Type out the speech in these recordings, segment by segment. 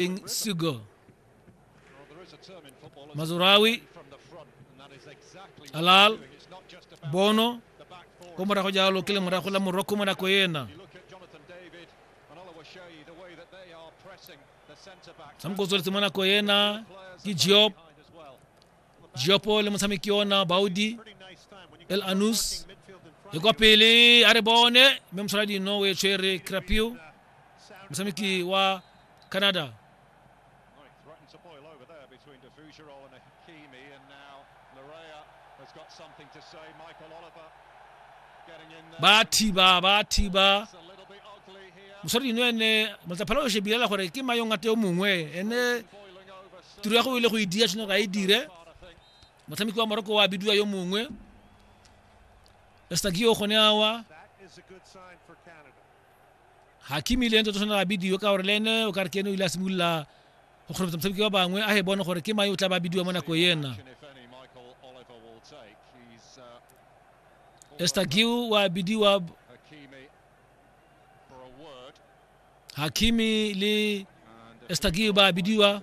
King Sugo. Mazurawi, Alal, Bono, ko morago jalo ke le morago la moroko mo nako ena tshamoko o tsweletse mo nako ena ke job Giopo le motshameki ona Baudi El Anus e kwa pele a re bone mme mosola dino o e tshwere Crapio motshameki wa Canada ba thiba ba thiba mosadi eno ene motlaphela o shebilela gore ke mayong a te yo mongwe ene tiro ya go ile go e dia tshwanelo ga e dire motshameki wa moroko wa bidiwa yo mongwe estagio gone awa hakimi le ntse tshwanela a bidiwe ka gore le ene o ka re ke ene o ile a simolola go kgorobetsa motshameki wa bangwe a he bone gore ke mae o tla ba bidiwa mo nako ena estagiu wa bidiwa hakimi le estagiu ba bidiwa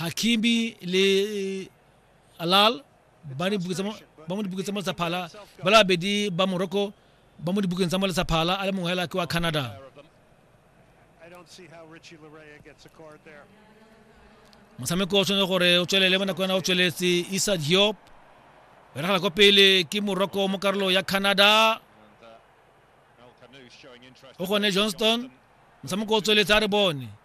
hakimi le alal ba ne buke tsa mo- ba mo dibukeng tsa mo tsa phala ba le babedi ba morocco ba mo dibukeng tsa mo le tsa phala a le mongwe hela ke wa canada Pair of them. I don't see how Richie Larea gets a card there. motshameko o tshwanetse gore o tswelele mo nako yana o tsweletse isa diop o diragala kwa pele ke morocco mo karolo ya canada And uh, Al Khanouch showing interest. o gone johnston motshameko o tsweletse a re bone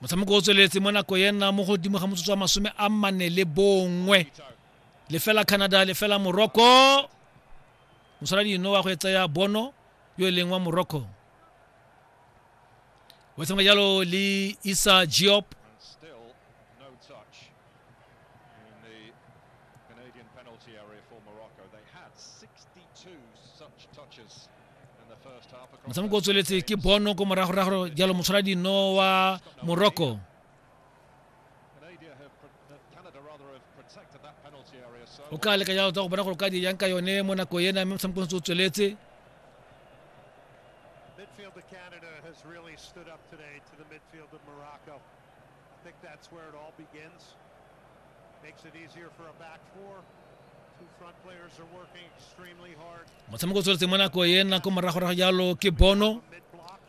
motshameko o tsweletse mo nako e nna mo godimo ga motsotso wa masome a mane le bongwe lefela canada lefela morocco mosala dino wa go e tsaya bono yo e leng wa morocco wa tshameka jalo le isa giop And still no touch in the Canadian penalty area for Morocco. They had 62 such touches motshameko o tsweletse ke bono ko moragorago jalo motshwara dino wa morocco o ka leka jalo tsa go bona gore o ka di yang ka yone mo nako ena mme motshameko ntse o tsweletse I think that's where it all begins. Makes it easier for a back four. Two front players are working extremely hard. motshameko o tsweletse mo nako e nna ko moragorago jalo ke bono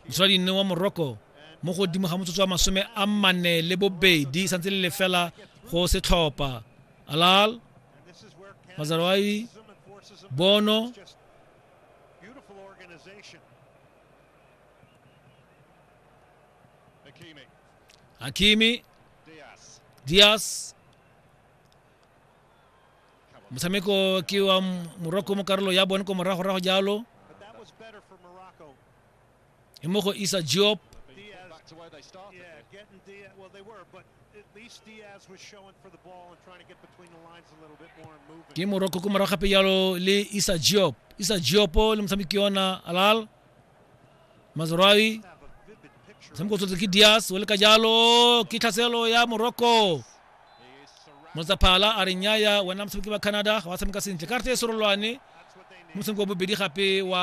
mosoladi nne wa morocco mo godimo ga motsotso wa masome a mane le bobedi santse le lefela go setlhopha alal And this is where Canada Mazarwai, forces them and forces them bono It's just beautiful organization. hakimi dias motshameko ke wa morocco mo karolo ya bone ko moragorago jalo e mo go isa job ke morocco ko morago gape jalo le isa job isa jopo le motshameki yona alal mazrawi motshameko tsotse ke dias o le ka jalo ke tlhaselo ya morocco motsaphala a re nnyaya wena motshameki wa canada ga wa tshameka sentle ka rete e serolwane motshameko wa bobedi gape wa